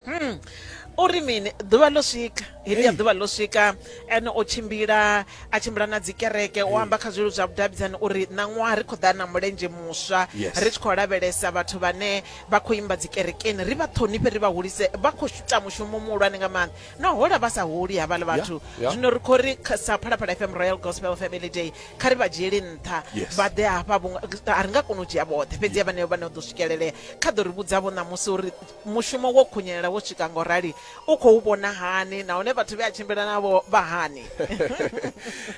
Hmm. u ri mini ḓuvha ḽo swika heḽi ya ḓuvha ḽo swika ene o tshimbila a tshimbila na dzi kereke o amba kha zwilelu zwa vhudavhidzani uri ṋaṅwaha ri khou ḓa na mulenzhe muswa ri tshi khou lavhelesa vhathu vhane vha khou imba dzi kerekeni ri vha ṱhonifhe ri vha hulise vha khou ita mushumo muhulwane nga maanḓa na hola vha sa holi havhala vhathu zwino ri khou ri sa phalaphala fm royal gospel family day kha ri vha dzhieli nṱha vha ḓe hafha a ri nga koni u dzhia vhoṱhe fhedzi ya vhaneo vhane o ḓo swikelelea kha ḓo ri vhudzavho ṋamusi uri Mushumo wo khunyelela wo swika ngo rali u khou vhona hani nahone vhathu vhe a tshimbila navho vha hani?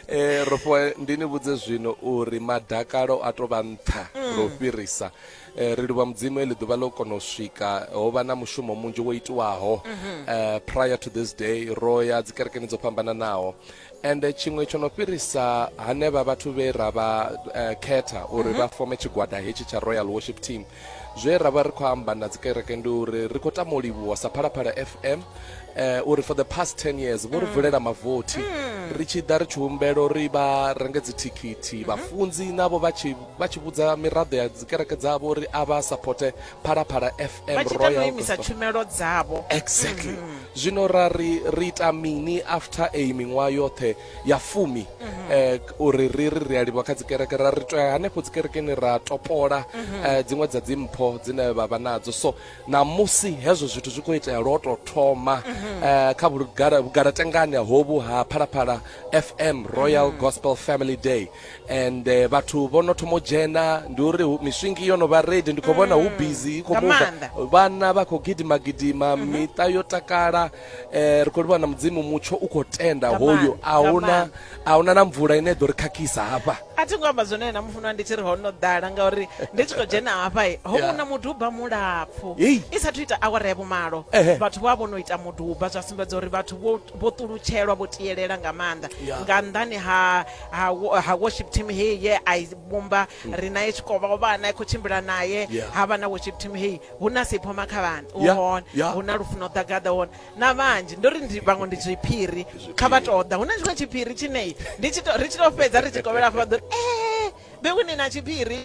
eh rofo ndi ni vhudze zwino uri madakalo a to vha nṱha mm. ro fhirisa eh, ri livha mudzimu eli ḓuvha ḽo kona u swika ho vha na mushumo munzhi wo itiwaho mm -hmm. eh, prior to this day ro ya dzikerekeni dzo fhambananaho and tshiṅwe tsho no fhirisa hanevha vhathu vhe ra vha uh, khetha uri mhm. vha fome tshigwada hetshi tsha royal worship team zwe ra vha ri khou amba na dzikereke ndi uri ri khou tama u livhuwa sa phalaphala fm uh, eh, uri for the past 10 years vho ri mm. vulela mavothi mm. ri tshi ḓa ri tshi humbelo ri vha renge dzithikhithi mhm. vhafunzi navho vha tshi vhudza miraḓo ya dzikereke dzavho uri a vha supporte phalaphala fm vha tshi ita no royal imisa Gospel. tshumelo dzavho exactly zwino ra ri ri ita mini after a miṅwaha yoṱhe ya fumi eh, k- uri ri ri ri a livha kha dzikereke ra ri to ya hanefho dzikerekeni ra topola eh, dziṅwe dza dzimpho dzine vha vha nadzo so namusi hezwo zwithu zwi khou itea lwo to thoma eh, kha vhugala- vhugalatengani hovhu ha phalaphala fm royal gospel family day and eh, vhathu vho no thoma u dzhena ndi uri hu- miswingi yo no vha redi ndi khou vhona hu busy i khou Nga muva maanḓa. Mhm. vhana vha khou gidima gidima miṱa yo takala eh, ri khou livhana mudzimu mutsho u khou tenda Nga hoyu maanḓa, a nga huna maanḓa. a huna na mvula ine ḓo ri khakhisa hafha a thi ngo amba zwone na mufunwa ndi tshi ri ho no ḓala ngauri ndi tshi khou dzhena hafha ho Yeah. vhona muduba mulapfu Hey. i sathu ita awara ya vhumalo Ehe. vhathu vha vho no ita muduba zwa sumbedza uri vhathu vho- vho ṱulutshelwa vho tiyelela nga maanḓa Yeah. nga nnḓani ha ha wo- ha worship team heyi ye a i vhumba ri naye tshikovha o vha a na khou tshimbila naye Yeah. ha vha na worship team heyi hu na siphoma kha vhana u Yeah, hone yeah. hu na lufuno ḓagaḓa hone na vhanzhi ndo ri ndi vhaṅwe ndi zwiphiri kha vha tou ḓa hu na tshiṅwe tshiphiri tshine ndi tshi to- ri tshi to fhedza ri tshi kovhela afho vha ḓo ri ee bewini na tshiphiri